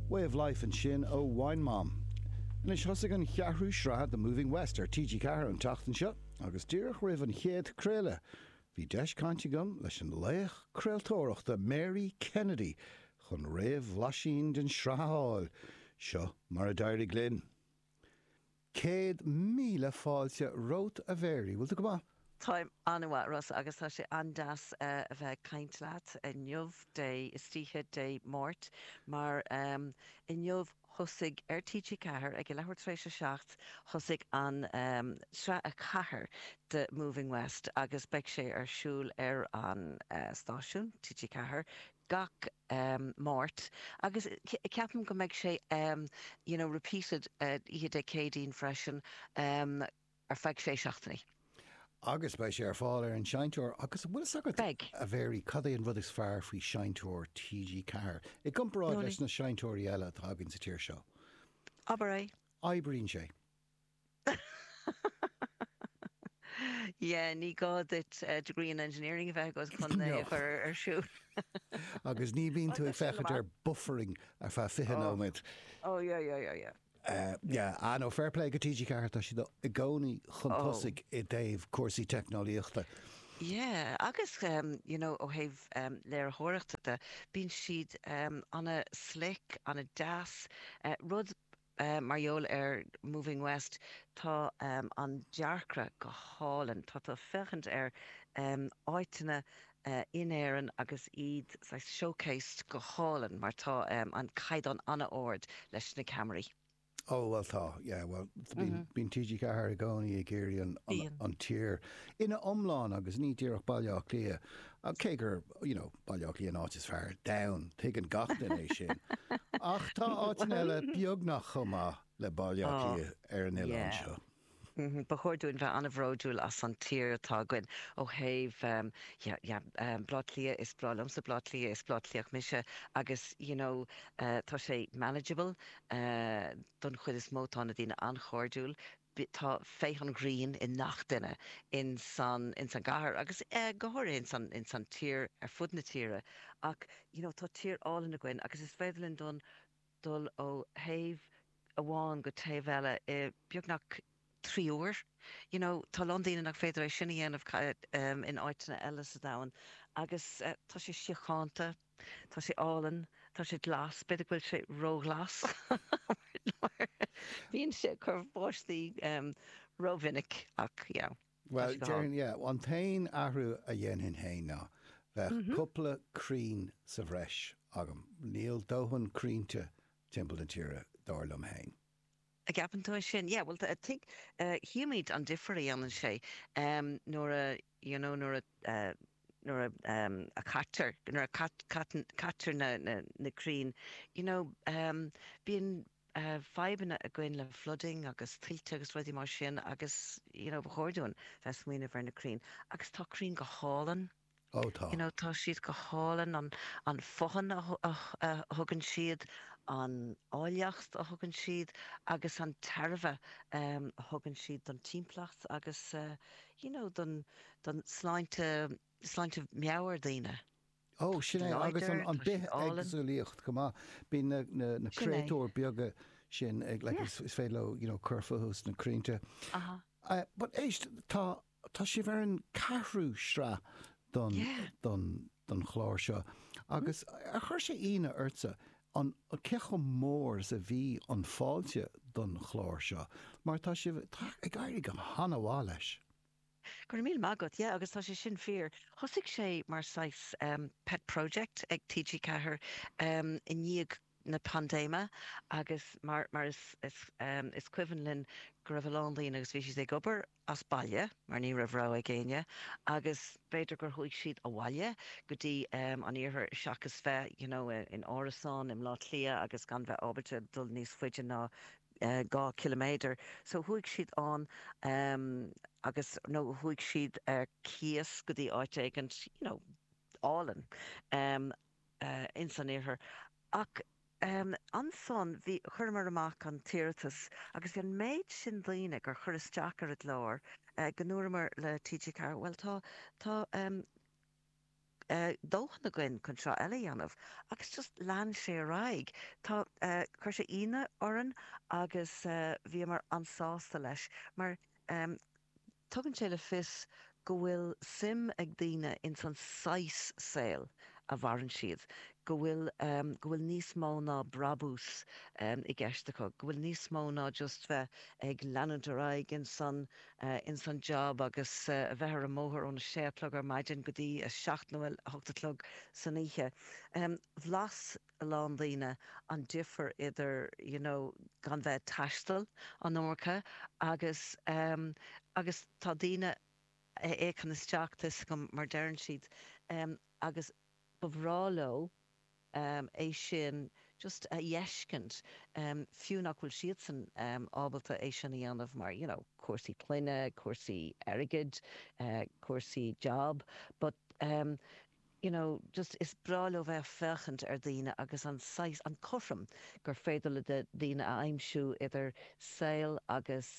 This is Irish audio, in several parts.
Way of Life ansin ó Wine Mom. Anois thosaigh an cheathrú sraith de Moving West ar TG4 an tseachtain seo agus díreach roimh an chéad craoladh bhí deis cainte agam leis an laoch craoltóireachta Mary Kennedy chun réamhbhlaisín den sraith a fháil. Seo mar a d'éirigh linn. Céad míle fáilte romhat a Mhary. Bhfuil tú go maith? Táim an-mhaith, Rossa, agus tá sé an-deas a bheith ag caint leat inniu, Dé, istoíche Dé Máirt, mar inniu thosaigh, ar TG4, ag a leathuair tar éis a seacht, thosaigh an sraith a 4 de Moving West agus beidh sé ar siúl ar an stáisiún, TG4, gach Máirt agus ceapaim go mbeidh sé you know repeated oíche Dé Céadaoin freisin ar feadh sé seachtainí. Agus beidh sé ar fáil ar an Seinnteoir agus an bhfuil fhios agat, Beidh. a Mhary, cad é an rud is fearr faoi Sheinnteoir TG Ceathair i gcomparáid leis na seinnteoirí eile atá againn sa tír seo? Abair é. Oibríonn sé. Yeah, ní gá duit degree in engineering a bheith agat chun é a chur ar siúl. Agus ní bhíonn tú ag féachaint ar buffering ar feadh 20 nóiméad. Oh, yeah, yeah, yeah, yeah. Yeah, ah no, fair play go TG4, tá siad i gcónaí chun tosaigh i dtaobh cúrsaí teicneolaíochta. Yeah, agus, you know, ó thaobh léiritheoireachta de, bíonn siad ana slick, ana deas Mar gheall ar Moving West, tá an dearcra go hálainn. Tá tú ag féachaint ar áiteanna in Éirinn agus iad saghas showcased go hálainn mar tá an caighdeán an-ard leis na ceamaraí. Oh, bhuel tá, yeah, bhuel, bíonn TG4 i gcónaí ag iarraidh an tír ina iomlán agus ní díreach Baile Átha Cliath Ach cé gur, you know, Baile Átha Cliath an áit is fearr ar domhan, tuigeann gach duine é sin. Ach tá áiteanna eile beagnach chomh maith le Baile Átha Cliath ar an oileán seo. Ba chóir dúinn bheith an-bhródúil as an tír atá againn ó thaobh, yeah, yeah, Baile Átha Cliath, is breá liomsa Baile Átha Cliath, is Baile Átha Cliathach mise agus, you know, tá sé manageable don chuid is mó, tá na daoine an-chairdiúil, bh tá féith an ghrinn i ngach duine in san in san gcathair agus go háirithe in san in san tír ar fud na tíre ach you know tá tír álainn againn agus is féidir linn dun dul ó thaobh amháin go taobh eile i beagnach trí uair. You know tá a lán daoine nach féidir é sin a dhéanamh in áiteanna eile sa domhan agus tá sé síochánta. Tá sé álainn, tá sé glas, b'fhéidir go bhfuil sé róghlas, mar bíonn sé ag cur báistí rómhinic, ach yeah, tá sé go hálainn. Yeah. An t-aon athrú a dhéanfainn féin ná bheadh cúpla crainn sa bhreis agam. Níl dóthain crainnte timpeall na tíre, dar liom féin. An gceapann tú é sin? Yeah, bhuel, tuigfimid an difear a dhéanann sé nuair a. you know nuair a, nuair a, a caitear, nuair a caitear na, na crainn, you know bíonn fadhbanna againn le flooding agus tuilte agus rudaí mar sin agus you know ba chóir dúinn bheith ag smaoineamh ar na crainn agus tá crainn go hálainn, oh tá, you know tá siad go hálainn, an, an fothain a thugann siad, an áilleacht a thugann siad agus an tairbhe a thugann siad don timpeallacht agus eh, You know, don, don sláinte, sláinte meabhair daoine. Ó, sin é, agus an, an bhithéagsúlacht, chomh maith. Bíonn na, na, na créatúir beaga sin ag, like, is, is féidir leo, you know, cur fúthu sna crainnte. Eh, but éist, tá, tá sibh ar an ceathrú sraith don, don, don chlár seo agus ar chuir sé ionadh ortsa an cé chomh mór is a bhí an fáilte don chlár seo mar tá sibh tá ag éirí go han-mhaith leis. Go raibh míle maith agat. Yeah agus tá sé sin fíor. Thosaigh sé mar saghas pet project ag TG4 i ndiaidh na paindéime agus mar mar is is is cuimhin linn go raibh a lán daoine agus bhí siad ag obair as baile mar ní raibh rogha ag éinne agus b'fhéidir gur chuaigh siad abhaile go dtí an iarthar seachas bheith you know in árasán i mBleá Cliath agus gan bheith ábalta dul níos faide ná dhá ciliméadar so chuaigh siad ann agus nó chuaigh siad ar cíos go dtí áit éigint you know álainn. ins an iarthar. Ach ansan bhí, chuireamar amach an t-iarratas agus bhí an méid sin daoine gur chuir isteach ar an gclár go ndúramar le TG4 bhuel tá tá dóthain againn chun seó eile a dhéanamh agus just lean sé ar aghaidh. Tá chuir sé ionadh orainn agus bhíomar an-sásta leis mar Tugann sé le fios go bhfuil suim ag daoine ins an saghas saoil a mhaireann siad, go bhfuil go bhfuil níos mó ná brabús i gceist acu, go bhfuil níos mó ná just bheith ag leanúint ar aghaidh ins an ins an job agus a bheith ar an mbóthar ón a sé a chlog ar maidin go dtí a seacht nó a hocht a chlog san oíche. Bhlais. a lán daoine an difear idir you know gan bheith ag taisteal an iomarca agus em agus tá daoine ag féachaint isteach, tá's agam, mar deireann siad em agus ba bhreá leo em é sin just a fheiscint em fiú nach bhfuil siadsan em ábalta é sin a dhéanamh mar you know cúrsaí clainne, cúrsaí airgid, eh cúrsaí job but em. you know, just is breá leo bheith ag féachaint ar dhaoine agus an saghas, an cothrom gur féidir le daoine a aimsiú idir saol agus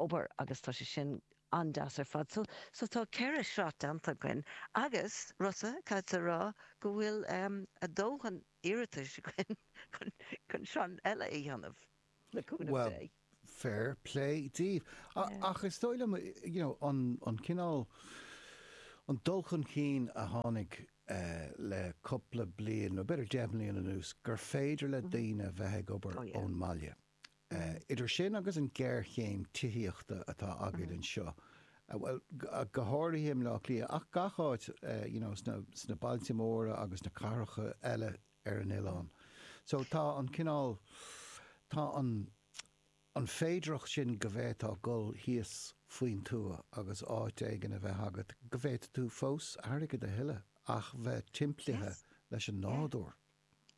obair agus tá sé sin an-deas ar fad. So, so tá ceithre shraith déanta againn agus, Rossa, caithfidh mé a rá go bhfuil ár ndóthain iarratais againn chun chun sraith eile a dhéanamh. le cúnamh Dé. Well, fair play díbh. Ach is dóigh liom, you know, an, an cineál, an dul chun cinn a tháinig le cupla bliain, nó b'fhéidir deich mbliain anuas, gur féidir le daoine a bheith ag obair ón mbaile. Idir sin agus an géarchéim tithíochta atá againn anseo, bhuel, go háirithe i mBleá Cliath, ach gach áit, you know, sna, sna bailte móra agus sna cathracha eile, ar an oileán. So tá an cineál, tá an, an féidearthacht sin go bhféadfá dhul thíos faoin tuath agus áit éigin a bheith agat go bhféadfadh tú fós airgead a thuilleadh ach bheith timplithe Yes. leis an Yeah. nádúr.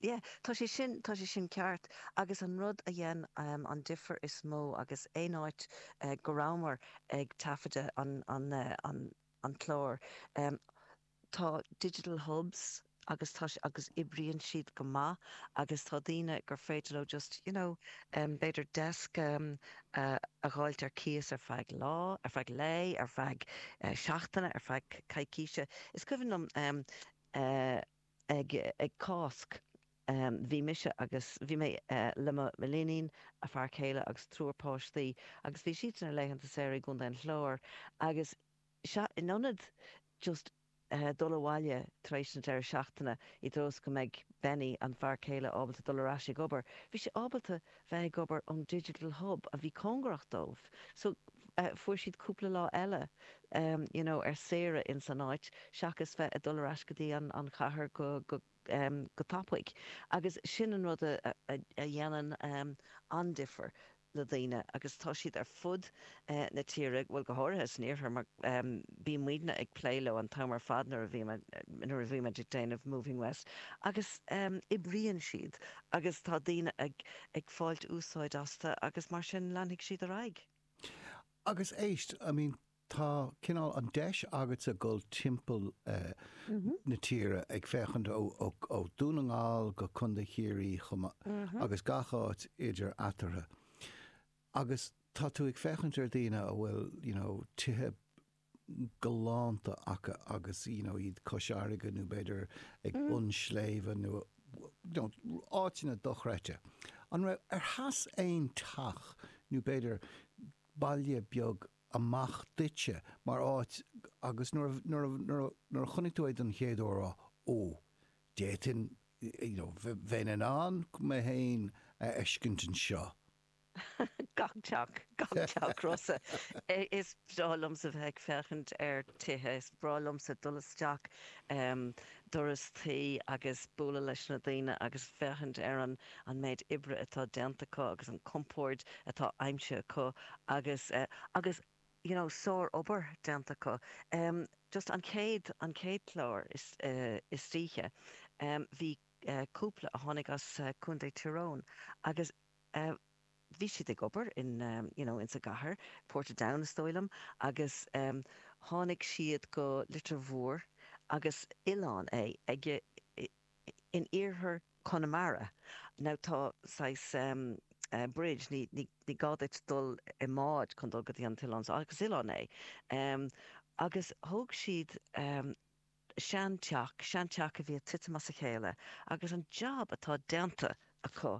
Yeah. Tá sé sin, tá sé sin ceart. Agus an rud a dhein an difear is mó in aon áit go rabhamar ag taifeadadh an, an, an, an clár, Tá digital hubs agus tá siad agus oibríonn siad go maith agus tá daoine gur féidir leo just you know b'fhéidir deasc a dh'fháilt ar cíos ar feadh lá, ar feadh lae, ar feadh seachtaine, ar feadh coicíse. Is cuimhin liom ag ag Cásc bhí mise agus bhí mé le m'iníon, a fear céile agus triúr páistí agus bhí siad ar a laethanta saoire i gContae an Chláir agus Sea, in ionad just dul abhaile tar éis na deireadh seachtaine i dtreo is go mbeidh Benny, an fear céile, ábalta dul ar ais ag obair, bhí sé ábalta bheith ag obair ón Digital Hub a bhí cóngarach dóibh. So, fuair siad cúpla lá eile, you know, ar saoire ins an áit seachas bheith ag dul ar ais go dtí an chathair go, go, go tapaidh agus sin an rud a dhéanann an-difear le daoine agus tá siad ar fud na tíre, bhuel go háirithe san iarthar mar bíonn muidne ag plé leo an t-am ar fad nuair a bhímid ag déanamh Moving West agus oibríonn siad agus tá daoine ag fáilt úsáid astu agus mar sin leanfaidh siad ar aghaidh. Agus éist, I mean Tá cineál an-deis agatsa a dhul timpeall na tíre ag féachaint ó Dhún na nGall go Contae Chiarraí chomh maith agus gach áit idir eatarthu agus tá tú ag féachaint ar dhaoine a bhfuil you know tithe galánta acu agus you know iad cois farraige nó b'fhéidir ag bun sléibhe nó áiteanna dochreidte. An raibh, ar sheas aon teach nó b'fhéidir baile beag amach duitse mar áit agus nuair a, nuair a, nuair a, nuair a chonaic tú é don chéad uair, á, ó, d'fhéadfainn, you know, bheinn in ann mé féin a fheiscint anseo. Gach teach, gach teach, Rossa. Is breá liomsa bheith ag féachaint ar thithe, is breá liomsa dul isteach doras tí agus bualadh leis na daoine agus féachaint ar an an méid oibre atá déanta acu agus an compord atá aimsithe acu agus agus you know sárobair déanta acu. Em just an chéad an chéad chlár istoíche em bhí cúpla a tháinig as Contae Tyrone agus eh bhí siad ag obair in, you know, insa gcathair, Portadown is dóigh liom, agus ehm tháinig siad go Leitir Móir agus oileán é, ag eh, in iarthar Chonamara. Now tá saghas ehm eh bridge, ní, ní, ní gá duit dul i mbád chun dul go dtí an t-oileán so, ach is oileán é. Ehm agus thóg siad ehm. seanteach, seanteach a bhí ag titim as a chéile agus an jab atá déanta acu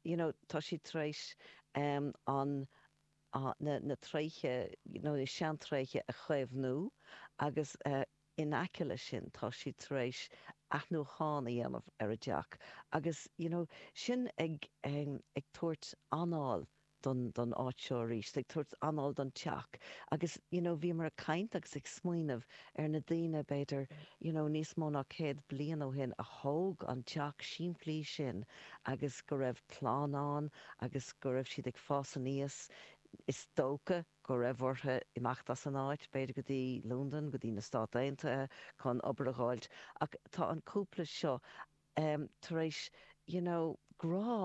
you know tá siad tar éis an na tréithe you know na seantréithe a chaomhnú agus in aice leis sin tá siad tar éis athnuachán a dhéanamh ar an dteach agus you know sin ag ag tabhairt anáil don don áit seo aríst, ag tabhairt anáil don teach agus you know bhíomar ag caint agus ag smaoineamh ar na daoine b'fhéidir you know níos mó ná céad bliain ó shin a thóg an teach simplí sin agus go raibh clann ann agus go raibh siad ag fás aníos, is dócha go raibh orthu imeacht as an áit, b'fhéidir go dtí Londain, go dtí na Stáit Aontaithe chun obair a dh'fháilt ach tá an cúpla seo ehm tar éis you know grá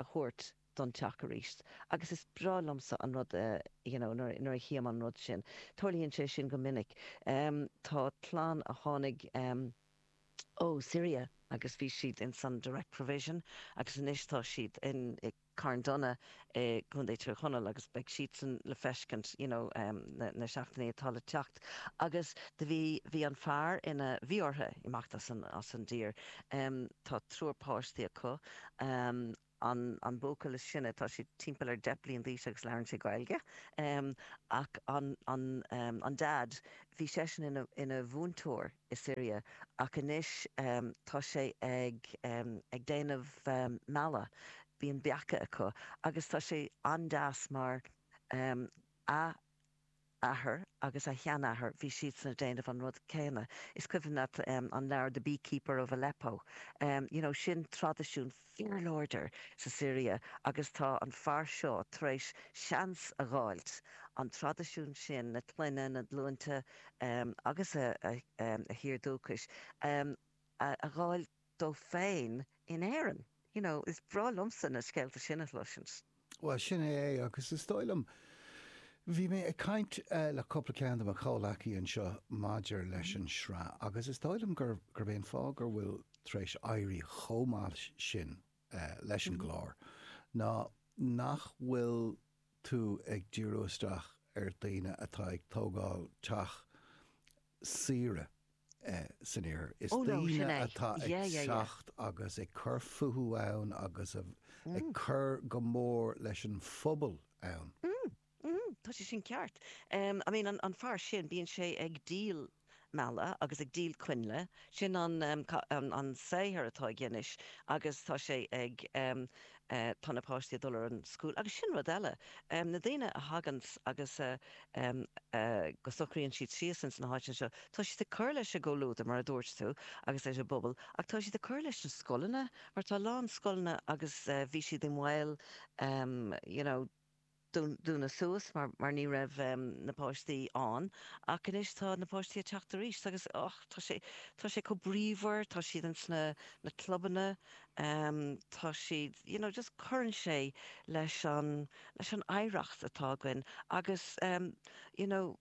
a thabhairt don teach aríst agus is breá liomsa an rud you know nuair a chím an rud sin. Tarlaíonn sé sin go minic. Tá clann a tháinig ó Syria agus bhí siad ins an Direct Provision agus anois tá siad in Carndonagh i gContae Thír Chonaill agus beidh siadsan le feiscint you know na seachtainí atá le teacht agus do bhí bhí an fear ina bhí orthu imeacht as an as an dtír. Tá triúr páistí acu. an buachaill is sine, tá sé timpeall ar deich bliain d'aois agus labhrann sé Gaeilge, ach an Dad, bhí seisean ina mhúinteoir i Siria ach anois tá sé ag déanamh meala, bíonn beacha acu agus tá sé an-deas mar a. athair agus a sheanathair, bhí siadsan ag déanamh an rud céanna. Is cuimhin leat an leabhar The Beekeeper of Aleppo, you know, sin traidisiún fíorláidir sa Siria agus tá an fear seo tar éis seans a dh'fháilt an traidisiún sin, na clainne, na glúinte agus a thír dúchais a dh'fháilt. dó féin in Éirinn. You know, is breá liomsa na scéalta sin a chloisint. Bhuel, sin é é, agus is dóigh liom, bhí mé ag caint le cúpla ceann de mo chomhleacaí anseo maidir leis an tsraith, agus is dóigh liom gurb é an fáth gur bhfuil tar éis éirí chomh maith sin, leis an gclár, ná nach bhfuil tú ag díriú isteach ar dhaoine atá ag tógáil teach saoire san iarthar. Is daoine atá ag teacht agus ag cur fúthu ann agus ag cur go mór leis an phobal ann. Ahem, tá sé sin ceart. I mean, an fear sin, bíonn sé ag díol meala agus ag díol coinnle, sin an, em, an saothar atá aige anois agus tá sé ag, em, eh, tá na páistí ag dul ar an scoil agus sin rud eile, em, na daoine a thaganns agus a, em, a, go socraíonns siad síos ins na háiteanna seo, tá siad ag cur leis an gcomhluadar mar a dúirt tú agus leis an bpobal ach tá siad ag cur leis na scoileanna mar tá a lán scoileanna agus, eh, bhí siad i mbaol, em, you know, dúnadh suas mar ní raibh na páistí ann. Ach anois tá na páistí ag teacht arís agus ach tá sé tá sé chomh bríomhar, tá siad insna na clubanna, tá siad, you know, just cuireann sé le an leis an oidhreacht atá againn agus, you know,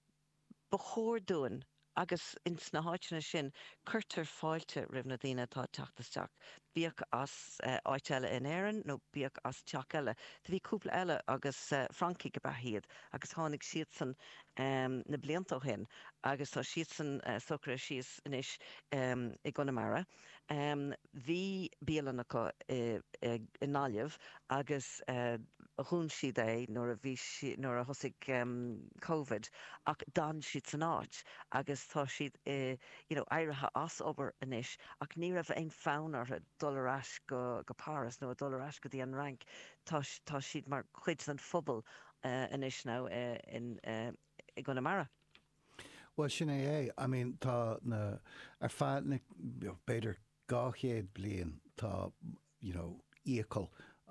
ba chóir dúinn, agus ins na háiteanna sin cuirtear fáilte roimh na ndaoine atá ag teacht isteach, bíodh as áit eile in Éirinn nó bíodh as teach eile. Do bhí cúpla eile agus Francaigh ab ea iad agus tháinig siadsan na blianta ó shin agus tá siadsan socraithe síos anois i gConamara. Bhí bialann acu i nGaillimh agus dhún siad é nuair a bhí siad, nuair a thosaigh Covid ach d'fhan siad san áit agus tá siad i, you know, éirithe as obair anois ach ní raibh aon fonn orthu dul ar ais go, go Páras nó a dhul ar ais go dtí an Fhrainc. Tá, tá siad mar chuid den phobal anois now i, in, i gConamara. Bhuel, sin é é. I mean, tá na, ar feadh na, b'fhéidir, dhá chéad bliain, tá, you know, iachall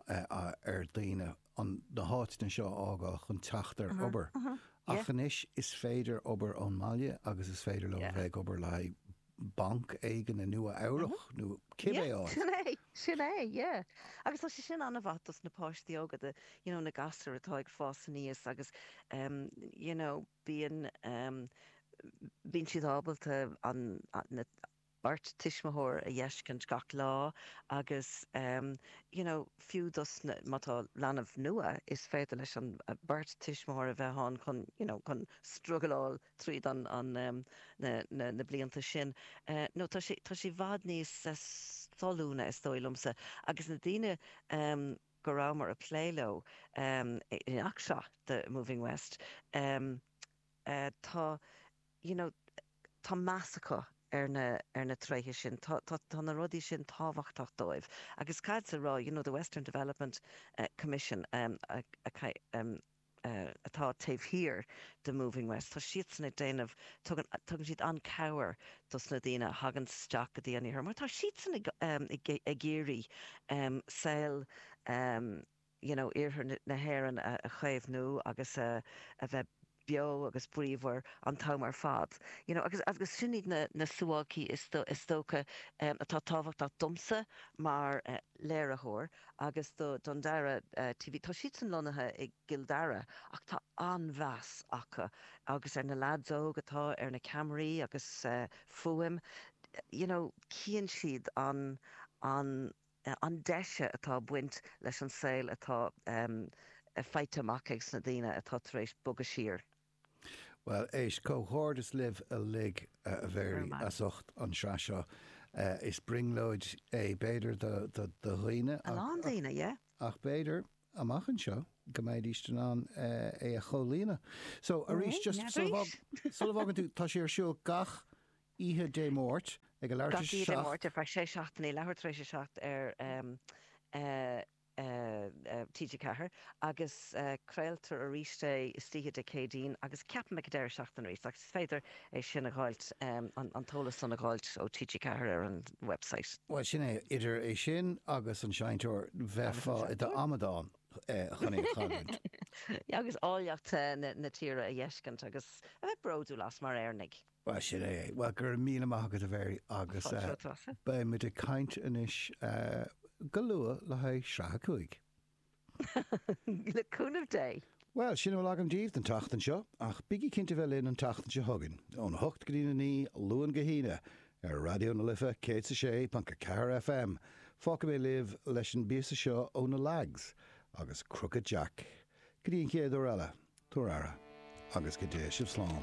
ar daoine an, na háiteanna seo a fhágáil chun teacht ar obair. Ach anois, is féidir obair ón mbaile agus is féidir leo a bheith ag obair le haghaidh banc éigin i Nua-Eabhrach nó cibé áit. Sin é, sin é, yeah. Agus tá sé sin an-mhaith dos na páistí óga, the, you know, na gasúir atá ag fás aníos agus, um, you know, bíonn bíonn siad ábalta an na beirt tuismitheoir a dh'fheiscint gach lá agus you know fiú dos na má tá leanbh nua is féidir leis an beirt tuismitheoir a bheith ann chun you know chun struggleáil tríd an an na na blianta sin nó tá sé tá sé i bhfad níos solúbtha is dóigh liomsa agus na daoine go rabhamar ag plé leo ins an tsraith seo The Moving West tá you know tá meas acu ar na ar na tréithe sin tá tá tá na rudaí sin tábhachtach dóibh agus cad sa rá you know the Western Development Commission a atá taobh thiar de Moving West, tá siadsan ag déanamh, tugann, tugann siad an-chabhair dos na daoine a thagann isteach go dtí an iarthar mar tá siadsan ag, ag, ag iarraidh saol you know iarthar na hÉireann a chaomhnú agus a bheith beo agus bríomhar an t-am ar fad. You know agus, agus sin iad na, na suáilcí is, is dócha atá tábhachtach domsa mar léiritheoir. agus do Dundara TV. Tá siadsan lonnaithe i gCill Dara ach tá an-mheas acu agus ar na leaids óga atá ar na ceamaraí agus fuaim you know chíonn siad an an an deise atá baint leis an saol atá faighte amach ages na daoine atá tar éis bogadh siar Bhuel, éist, comhghairdeas libh uilig, a Mhéirí, as ucht an tsraith seo. Is brionglóid é b'fhéidir do dhaoine, ach b'fhéidir, amach anseo, go mbeidís in ann é a chomhlíonadh. So, arís, just sula bhfágann tú, tá sé ar siúl gach oíche Dé Máirt, ag a leathuair tar éis a seacht. Gach oíche Dé Máirt, ar feadh sé seachtainí, leathuair tar éis a seacht ar. TG4, agus craoltar arís é istoíche Dé Céadaoin agus ceapaim ag an deireadh seachtaine arís agus is féidir é sin a dh'fháilt, an t-eolas san a dh'fháilt ó TG4 ar an website. Bhuel, sin é, idir é sin agus an seinnteoir, bheifeá i d'amadán chun é a chailliúint. Agus áilleacht na tíre a dh'fheiscint agus a bheith bródúil as mar Éireannaigh. Bhuel, sin é. Bhuel, go raibh míle maith agat, a Mhary, agus beidh muid ag caint anois go luath le haghaidh sraith a cúig. Le cúnamh Dé. Bhuel, sin a bhfuil agam daoibh don tseachtain seo, ach bígí cinnte bheith linn an tseachtain seo chugainn, óna hocht go dtí na naoi, Luan go hAoine, ar Raidió na Life 106.4 FM. Fágfaidh mé libh leis an bpíosa seo ó na Lags agus Crooked Jack. Go dtí an chéad uair eile, tabhair aire, agus go dtéigh sibh slán.